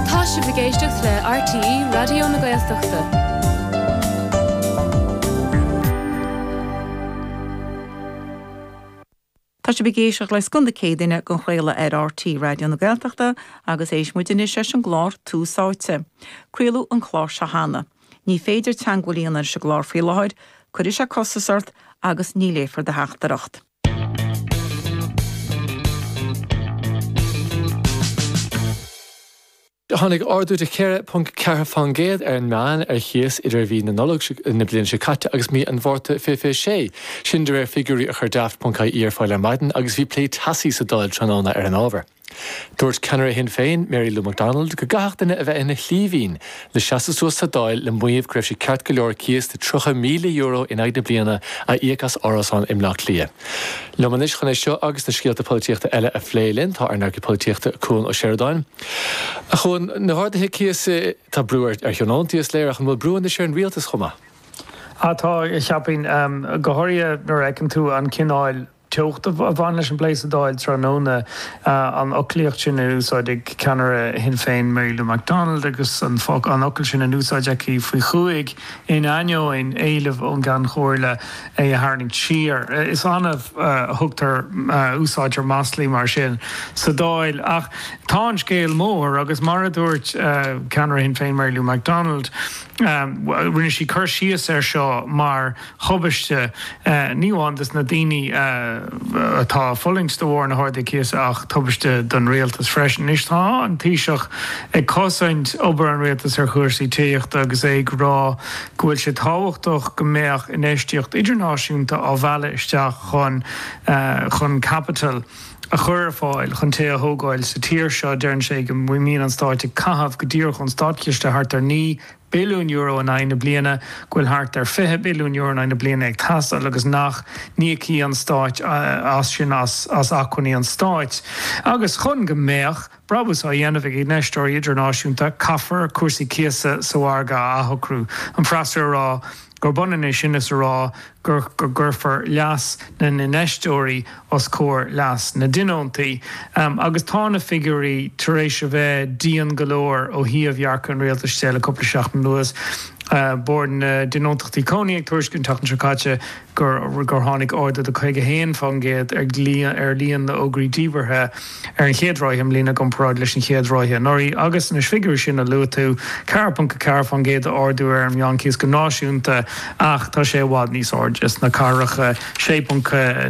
Tá sibh ag éisteacht le RTÉ Raidió na Gaeltachta. Tá sibh ag éisteacht le Scoth na Céadaoine á chraoladh ar RTÉ Raidió na Gaeltachta agus éistfidh muid anois leis an gclár Tús Áite. Craoladh an clár seo cheana. Ní féidir teagmháil a dhéanamh leis an gclár faoi láthair, cuirfidh sé costas ort agus ní léifear do theachtaireacht. Tháinig ardú de 4.4% ar an meán ar chíos idir mhí na Nollag na bliana seo caite agus mí an Mhárta 2026, sin de réir figiúirí a chuir Daft.ie ar fáil ar maidin agus bhí plé teasaí sa Dáil tráthnóna ar an ábhar. Dúirt ceannaire Shinn Féin, Mary Lou McDonald, go gcaithfeadh duine a bheith ina shlíbhín le seasamh suas sa Dáil le maíomh go raibh sé ceart go leor cíos de €30,000 in aghaidh na bliana a íoc as árasán i mBleá Cliath. Liom anois chun é seo agus na scéalta polaitíochta eile a phlé linn tá ár n-eagraí polaitíochta, Cuan Ó Seireadáin. Cuan, na harduithe cíosa, tá brú ar thionóntaí, is léir, ach an bhfuil brú anois ar an rialtas chomh maith? Tá, cheapfainn, go háirithe nuair a fheiceann tú an cineál teocht a bhain leis an bplé sa Dáil tráthnóna, an fhoclaíocht sin in úsáid ag ceannaire Shinn Féin Mary Lou McDonald agus an focal sin in úsáid aici faoi chúig in ainneoin éilimh ón gCeann Chomhairle é a tharraingt siar. Is annamh a thugtar, úsáidtear maslaí mar sin sa Dáil ach tá an scéal mór agus mar a dúirt ceannaire Shinn Féin Mary Lou McDonald, rinne sí cur síos air seo mar. thubaiste, ní amháin dos na daoine atá ag fulaingt de bharr na harduithe cíosa ach tubaiste don rialtas freisin. Anois tá an Taoiseach ag cosaint obair an rialtais ar chúrsaí tithíochta agus é ag rá go bhfuil sé tábhachtach go mbeadh infheistíocht idirnáisiúnta á mhealladh isteach chun chun caipitil a chur ar fáil chun tithe a thógáil sa tír seo. Deireann sé go mbíonn an stát ag caitheamh go díreach ón státchiste thart ar naoi billiún euro in aghaidh na bliana, go bhfuil thart ar €20 billiún in aghaidh na bliana ag teastáil agus nach n-íocfaidh an Stát as sin as acmhainní an Stáit. Agus chun go mbeadh brabús á dhéanamh ag infheisteoirí idirnáisiúnta caithfear cúrsaí cíosa sa margadh a athshocrú, an freasúra ag rá. gurb ionann é sin is a rá gur go gcuirfear leas na n-infheisteoirí os comhair leas na dtionóntaí. Agus tá na figiúirí tar éis a bheith dian go leor ó thaobh dhearcadh an rialtais de le cúpla seachtain anuas, Bord na dTionóntachtaí Cónaí ag tuairisciú an tseachtain seo caite gur tháinig ardú de 51% ar líon na bhfógraí díbeartha. ar an chéad ráithe i mbliana i gcomparáid leis an chéad ráithe anuraidh agus, na figiúirí sin a luaigh tú, 4.4% d'ardú ar an meánchíos go náisiúnta ach tá sé i bhfad níos airde sna cathracha, 6.9%.